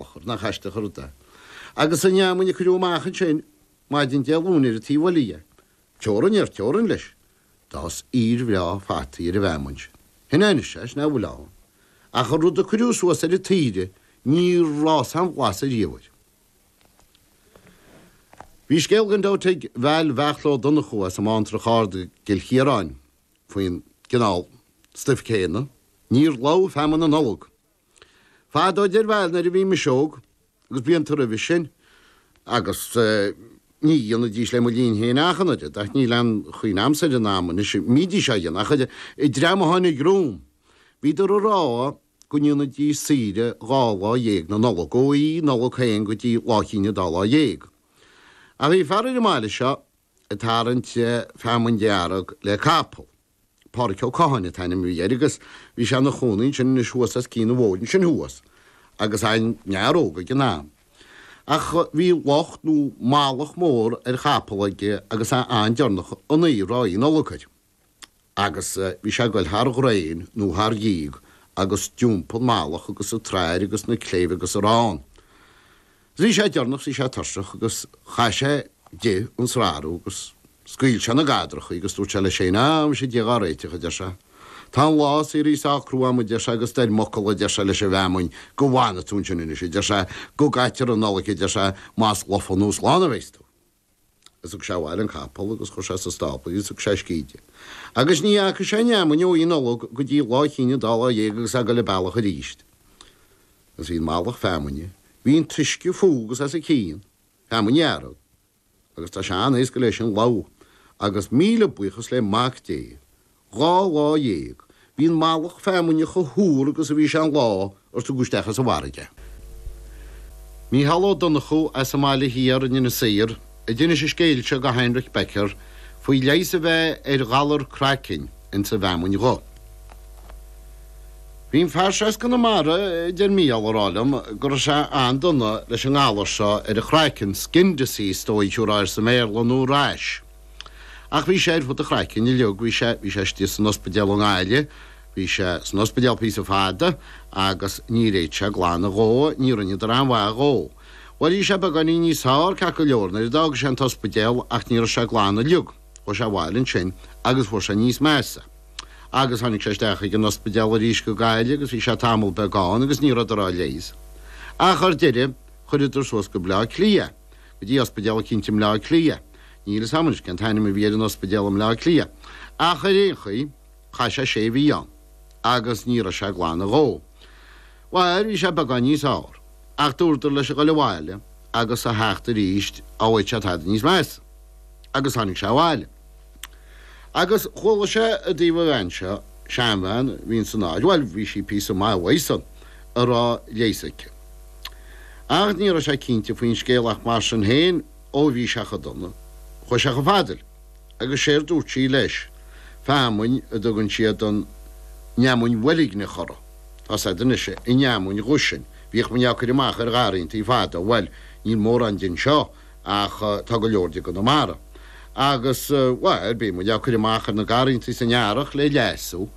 Ochón, nach aisteach an rud é. Agus an fheamainn a cuireadh amach ansin maidin Dé Luain ar an taobh eile dhe. Teorainn ar teorainn leis. D'fhás iomaire bhreá fataí ar an bhfeamainn sin. Shin é anois é, sin é a bhfuil ann. Ach an rud a cuireadh suas ar an taoide níor fhás aon bharr ariamh air. Bhí scéal gan dabht ag Val Bheartla Ó Donnchú as an mBantrach Ard i gCill Chiaráin faoin gcineál stuif céanna. Níor lobh feamainn na Nollag. Fadó a deir Val nuair a bhí mise óg, agus blianta roimhe sin, agus ní dhéanaidís le mo linn féin ach an oiread, ach níl aon chuimhne a'msa ar an am anois, bhídís á dhéanamh ach an dream a tháinig romham, bhíodar ag rá go ndéanaidís saoire dhá lá dhéag na Nollag, ó Oíche Nollag féin go dtí Lá Chinn Dá Lá Dhéag. Ach bhí fear ar an mbaile seo ag tarraingt feamainn dearg le capall. Pádraic Ó Catháin an t-ainm a bhí air agus bhí sé ina chónaí ansin anois thuas as cionn an bhóthair ansin thuas agus é ina fhear óg ag an am. Ach bhí lucht nó malach mór ar chapall aige agus é an-deireanach an oíche roimh Nollaig air agus bhí sé a' goil thar dhraein nó thar dhíog agus d'iompaigh an malach agus an tsrathair agus na cléibh agus a raibh ann. Bhí sé deireanach, bhí sé tuirseach agus chaith sé di an tsrathair agus scaoil sé na gadrachaí agus dúirt sé leis héin, Ah, muise Dia dhá réiteach, a deir sé. Tá an lá saothraithe sách crua agam, a deir sé, agus dar m'fhocal, a deir sé, leis an bhfeamainn, go bhfanfaidh tú ansin anois, a deir sé, go gcaitear an Nollaig, a deir sé, más lofa nó slán a bheas tú. Is thug sé abhaile an capall agus chuir sé sa stábla í is thug sé uisce di. Agus ní fhaca sé an fheamainn ó Oíche Nollag go dtí Lá Chinn Dá Lá Dhéag agus é ag dul a bealach aríst. Agus bhí an malach feamainne, bhí an t-uisce fúithi agus as a cionn, feamainn dhearg. Agus tá sé an-éasca léi sin lobhadh agus míle buíochas le Mac Dé Dhá lá dhéag. Bhí an malach feamainne chomh húr agus a bhí sé an lá, ar tugadh isteach as an bhfarraige. Mícheál Ó Donnchú as an mBaile Thiar in Inis Oírr a d'inis an scéal seo do Heinrich Becker faoi leigheas a bheith ar ghalar craicinn ins an bhfeamainn dhubh. Bhí an fear seo as Conamara, a deir Mícheál, a rá liom go raibh sé an-dona leis an ngalar seo ar a chraiceann, skin disease, is dóigh, a thabharfá air sa mBéarla, nó rash. Ach bhí sé ar fud an chraicinn uilig, bhí sé, bhí sé istigh san ospidéal i nGaillimh, bhí sé san ospidéal píosa fada agus níor fhéad sé glan a dhó, ní rinneadar aon mhaith dhó. Bhuel, bhí sé beagáinín níos fearr, ceart go leor, nuair a d'fhág sé an t-ospidéal ach ní raibh sé glan uilig, chuaigh sé abhaile ansin agus fuair sé níos measa. Agus tháinig sé isteach chuig an ospidéal arís go Gaillimh agus bhí sé tamall beag ann agus ní rabhadar á leigheas. Ach ar deireadh chuireadar suas go Baile Átha Cliath. go dtí ospidéal eicínt i mBleá Cliath. Níl fhios a'm anois cén t-ainm a bhí ar an ospidéal i mBleá Cliath. Ach ar aon chaoi, chaith sé sé mhí ann. Agus ní raibh sé glan a dhó. Bhuel, bhí sé beagán níos fhearr. Ach dúradar leis a ghoil abhaile agus a theacht aríst, dhá bhfaigheadh sé tada níos measa. Agus tháinig sé abhaile. Agus chuala sé i dtaobh an bhean seo, seanbhean a bhí insan áit, bhuel, bhí sí píosa maith uaidh san, a raibh leigheas aici. Ach ní raibh sé cinnte faoin scéal ach mar sin féin, ó bhí sé chomh dona, chuaigh sé chomh fada léi. Agus séard dúirt sí leis, feamainn a dtugann siad an fheamainn bhoilgneach uirthi, tá 'fhios a'd anois an fheamainn dhubh sin, bhíodh muinn á cur amach ar gharraíontaí fadó, bhuel, níl mórán de anseo, ach tá go leor de i gConamara. Agus, bhuel, bíonn muid á cur amach ar na garrantaí san earrach le leasú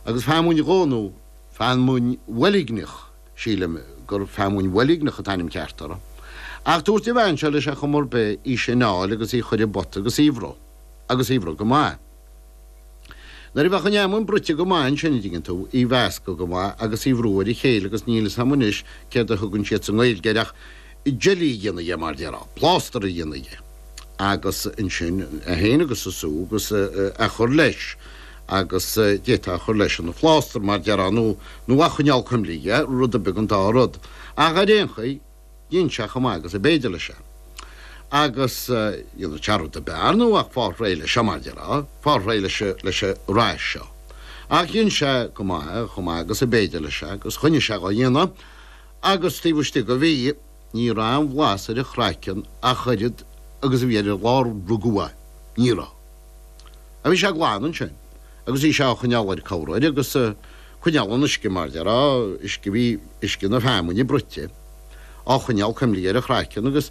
agus feamainn dhubh nó feamainn bhoilgneach, sílim gur feamainn bhoilgneach an t-ainm ceart uirthi. Ach dúirt an bhean seo leis ar chuma ar bith í sin a fháil agus í a chur i bpota agus í a bhruith. Agus í a bhruith go maith. Nuair a bheadh an fheamainn bruite go maith ansin an dtuigeann tú, í a mheascadh go maith agus í a bhrú ar a chéile agus níl 'fhios a'm anois céard a thugann siad sa nGaeilge air ach jelly a dhéanamh dhe mar déarfá, plástar a dhéanamh dhe agus ansin é féin agus an sú agus a chur leis agus d'fhéadfá a chur leis ina phlástar mar déarfá nó a choinneáil cuimlithe, rud ar bith den dá rud. Ach ar aon chaoi. Dhein sé chomh maith agus ab fhéidir leis é. Agus dhéanfadh sé rud ar bith ar ndóigh ach fáil réidh leis seo, mar déarfá, fáil réidh leis, leis an rash seo. Ach dhein sé go maith, chomh maith agus ab fhéidir leis é, agus choinnigh sé dhá dhéanamh. Agus taobh istigh de mhí, ní raibh aon bhlas ar a chraiceann ach oiread agus a bhí ar an lá a rugadh é. Ní raibh. a bhí sé glan ansin agus bhí sé á choinneáil air corruair agus coinneáil an uisce mar déarfá uisce bhí uisce na feamainne bruite á choinneáil cuimlithe ar a chraiceann agus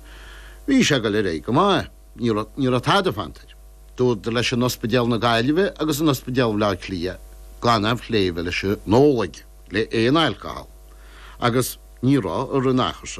bhí sé ag goil ar aghaidh go maith ní raibh ní raibh tada fanta air. Dúradar leis in ospidéal na Gaillimhe agus in ospidéal Bhaile Átha Cliath gan aon phlé a bheith leis an ól aige le aon alcohol agus ní raibh i rith an achar seo.